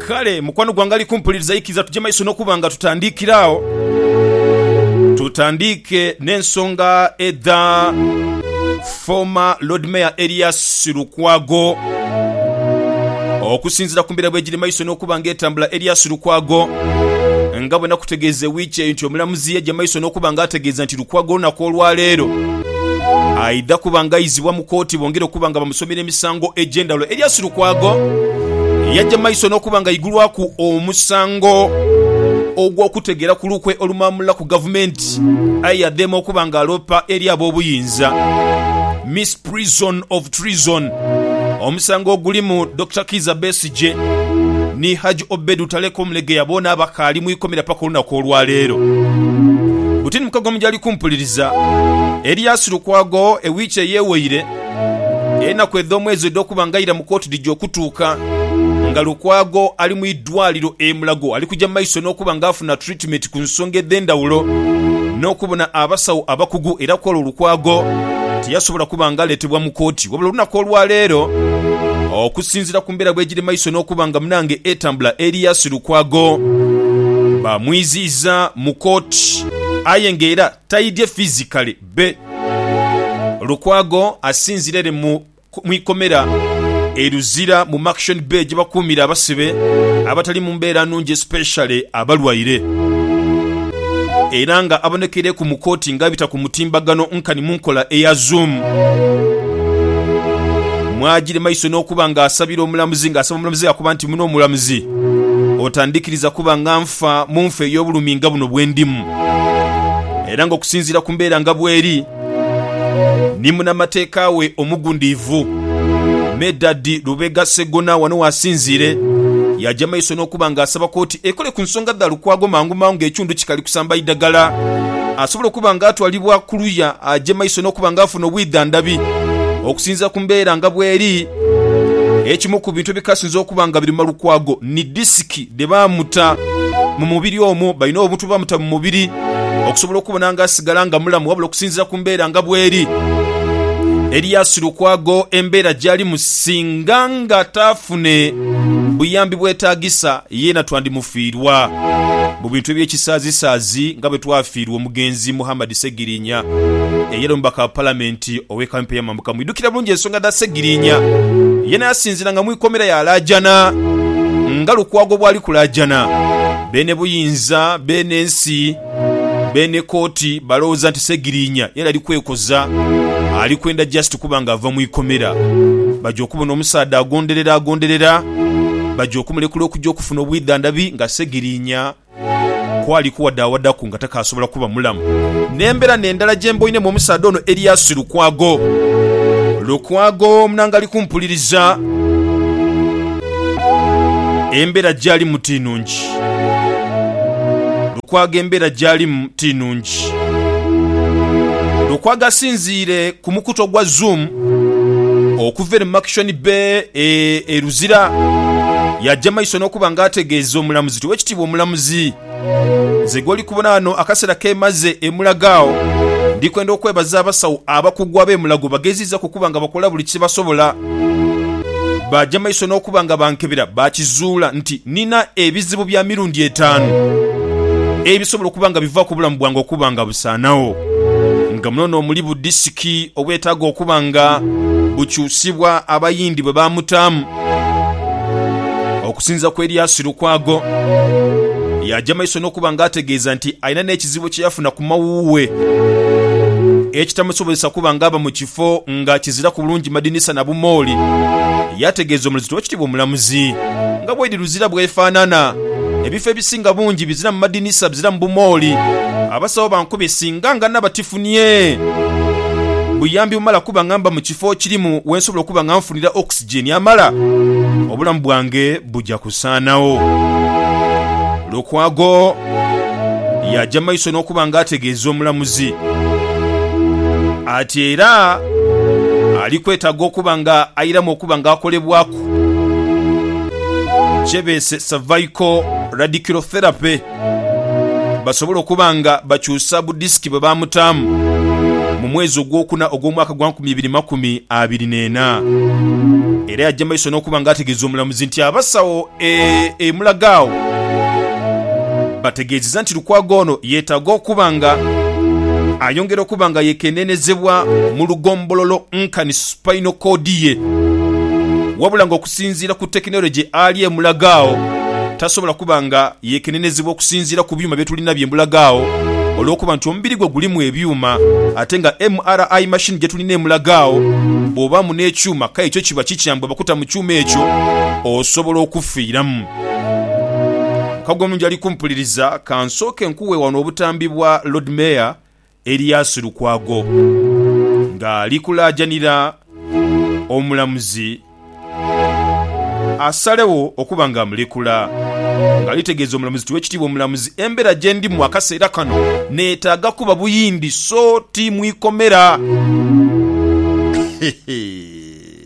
Kale mukwano gwange ali kumpuliriza, ikiriza tuje maiso n'okuba nga tutandiikira agho. Tutandiike n'ensonga edha former Lord Mayor Erias Lukwago. Okusinziira ku mbeera bwegiri maiso n'okuba nga etambula, Erias Lukwago nga bwenakutegeeza ewiiki eyo nti omulamuzi yaja maiso n'okuba nga ategeeza nti Lukwago olunaku olwaleero aidha kuba nga aizibwa mu kkooti bongere okuba nga bamusomera emisango egy'endhawulo eri Asu Lukwago eyagya mu maiso n'okuba nga aigulwaku omusango ogw'okutegeera ku lukwe olumaamula ku gavumenti aye yadheema okuba nga aloopa eri ab'obuyinza Misprision of Treason omusango ogulimu Dokita Kiiza Besigye Gye ni Haji Obedu Taleka Omulegeya boona abakaali mu ikomera paka olunaku olwa leero. Buti ni mukago mu gyali kumpuliriza. Elias Lukwago e wiiki eyeweire enaku edh'omwezi edh'okuba nga aira mu kooti dhija okutuuka nga Lukwago ali mu idwaliro e Mulago ali kuja maiso n'okuba nga afuna Estimate ku nsonga edh'endhawulo n'okubona abasawo abakugu era kw'olwo Lukwago tiyasobola kuba nga aleetebwa mu kooti wabula olunaku olwaleero okusinziira ku mbeera bwegiri maiso n'okuba nga munange etambula Erias Lukwago bamwiziiza mu kooti aye nga era taidye physically be Lukwago asinzira ere mu mu ikomera e Luzira mu Maction Bay gyebakuumira abasibe abatali mu mbeera nnungi especially abalwaire era nga abonekeireku mu kooti nga abita ku mutimbagano nkani mu nkola eya zoom mwajire maiso n'okuba nga asabira omulamuzi nga asaba omulamuzi akuba nti muno omulamuzi otandikiriza kuba nga nfa munfa ey'obulumi nga buno bwendimu era nga okusinziira ku mbeera nga bweri ni munamateeka we omugundiivu, Medard Lubega Ssegona wano w'asinziire yaja maiso n'okuba nga asaba kooti ekole ku nsonga dha Lukwago mangu mangu nga ekiwundu kikali kusamba idagala asobola okuba nga atwalibwa ku luya aje maiso n'okuba nga afuna obwidhandhabi okusinziira ku mbeera nga bweri. Ekimu ku bintu ebikasinze okuba nga biruma Lukwago ni disiki dhe baamuta mu mubiri omwo, balina obuntu bwe bamuta mu mubiri okusobola okubona nga asigala nga mulamu. Wabula okusinziira ku mbeera nga bweri, Elias Lukwago embeera gy'alimu singa nga taafune buyambi bwetaagisa yeena twandimufiirwa mu bintu eby'ekisaazisaazi nga bwe twafiirwa omugenzi Muhammad Ssegirinya eyali omubaka wa Palamenti Ow'e kampi ey'amambuka mwidhukira bulungi ensonga dha Ssegiriinya. Yena yasinziranga mu ikomera yaalaajana nga Lukwago bw'ali kulaajana. Beene buyinza, beene nsi, beene kooti balowooza nti Ssegiriinya yena ali kwekoza, ali kwenda just kuba nga ava mu ikomera. Baja okubona omusaadha agonderera agonderera, baja okumulekula okuja okufuna obwidhandhabi nga Ssegiriinya kwali kuwadaawadaku nga takaasobola kuba mulamu. N'embeera n'endala gye mboinemu omusaadha ono Elias Lukwago. Lukwago munange ali kumpuliriza. Embeera gy'alimu ti nnungi. Lukwago embeera gy'alimu ti nnungi. Lukwago asinziire ku mukutu ogwa Zoom okuva eno mu Makishoni Bay e Luzira. Yaja maiso n'okuba nga ategeeza omulamuzi Tuwe ekitiibwa Omulamuzi. Nze gw'oli kubona ghano akaseera ke mmaze e Mulago agho, ndi kwenda okwebaza abasawo abakugu ab'e Mulago bageziizaku okuba nga bakola buli kye basobola. Baaja mu maiso n'okuba nga bankebera baakizuula nti nnina ebizibu bya mirundi etaanu ebisobola okuba nga bivaaku obulamu bwange okuba nga busaanawo, nga muno n'omuli budisiki obwetaaga okuba nga bukyusibwa Abayindi bwe baamutaamu. Okusinza ku Elias Lukwago, yaja maiso n'okuba nga ategeeza nti alina n'ekizibu kye yafuna ku mawuuwe ekitamusobozesa kuba nga aba mu kifo nga kiziraku bulungi madinisa na bumooli. Yategeeza omulizito w'ekitiibwa omulamuzi nga bwaidhi luzira bwefanana, ebifo ebisinga bungi biziramu madinisa, biziramu bumooli. Abasawo bankubye singa nga naba tifunie buyambi bumala kuba nga mba mu kifo kirimu wensobola okuba nga nfuna nfunira oxygen amala, obulamu bwange buja kusaanagho. Lukwago yaaja maiso n'okuba nga ategeeza omulamuzi ati era ali kwetaaga okuba nga airamu okuba nga akolebwaku kye beese Cervical Radiculotherapy. basobole okuba nga bakyusa budisiki bwe baamutaamu mu mwezi ogwokuna ogw'omwaka gwa nkumi ibiri makumi abiri n'ena era yajja maiso n'okuba nga ategeeza omulamuzi nti abasawo e, e Mulagaagho bategeezeza nti Lukwago ono yeetaaga okuba nga ayongera okuba nga yekenenezebwa mu lugombololo nkani spinal cord ye wabula nga okusinziira ku tekinologye ali e Mulagaagho tasobola kuba nga Yeekenenezebwa okusinziira ku byuma bye tulina bye mbulaga agho olw'okuba nti omubiri gwe gulimu ebyuma ate nga MRI machine gye tulina emulaga agho. Bw'obaamu n'ekyuma kale kyo kiba kikyamu bwe bakuta mu kyuma ekyo osobola okufiiramu. Mukago omulungi ali kumpuliriza, ka nsooke nkuwe wano obutambi bwa Lord Mayor Elias Lukwago nga ali kulaajanira omulamuzi asalegho okuba nga amulekula nga ali tegeeza omulamuzi nti Owekitiibwa omulamuzi embera gyendimu akaseera kano netaaga kuba buyindi so ti mwikomera.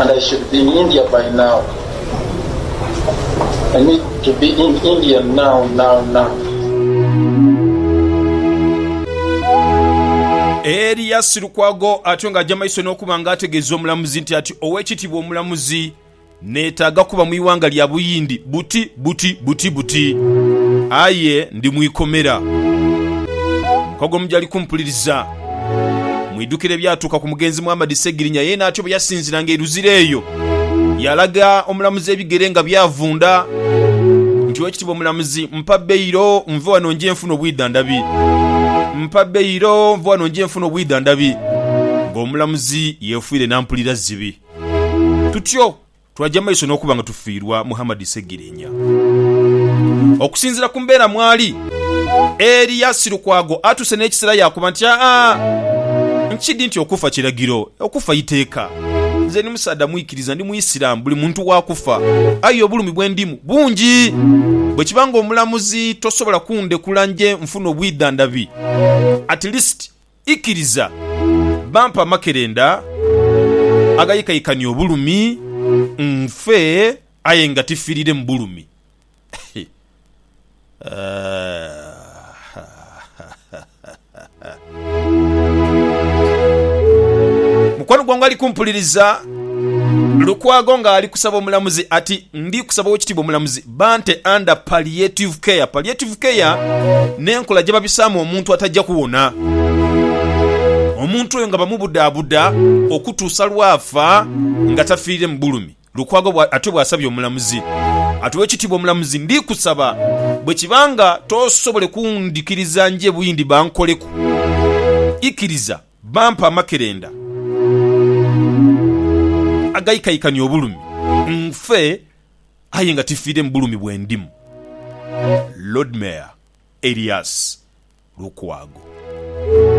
and I should be in India by now, I need to be in India now now now. Eli yasilukwago atyo nga aja maiso nokuba nga ategeza omulamuzi nti ati owekitibwa omulamuzi netaga kuba mwiwanga lya buyindi buti buti buti buti aye ndi mwikomera. Mukogomujali kumpuliriza. Mwidhukire ebyatuuka ku mugenzi Muhammad Ssegirinya, yeena atyo bwe yasinziranga e Luzira eyo yaalaga omulamuzi ebigere nga byavunda nti, Oweekitiibwa Omulamuzi, mpa beyiro nve wano nje nfune obwidhandhabi. Mpa beyiro nve wano nje nfune obwidhandhabi. Ng'omulamuzi yeefuire nampulira zibi. Tutyo! Twaja maiso n'okuba nga tufiirwa Muhammad Ssegiriinya. Okusinziira ku mbeera mwali, Erias Lukwago atuuse n'ekisera yaakoba nti, Aa, nkidhi nti okufa kiragiro, okufa iteeka. Nze ndi musaadha mwikiriza, ndi Muisiramu, buli muntu wa kufa. Aye obulumi bwe ndimu bungi. Bwe kiba nga Omulamuzi tosobola kundekula nje nfune obwidhandhabi, at least Ikiriza bampe amakerenda agaikaikania obulumi, nfe aye nga tifirire mu bulumi. Mukwano gwange ali kumpuliriza, Lukwago ng'ali kusaba omulamuzi ati, Ndi kusaba Owekitiibwa Omulamuzi, Bante under palliative care. Palliative care n'enkola gyebabisaamu omuntu ataja kuwona. Omuntu oyo nga bamubudaabuda okutuusa lw'afa nga tafiirire mu bulumi. Lukwago bw'atyo bw'asabye omulamuzi. Ati, Owekitiibwa omulamuzi, ndikusaba bwekiba nga tosobole kundhikiriza nje buyindi bankoleku, ikiriza bampe amakerenda agaikaikania obulumi nfe. aye nga tifiire mu bulumi bwe ndimu. Lord Mayor Erias Lukwago.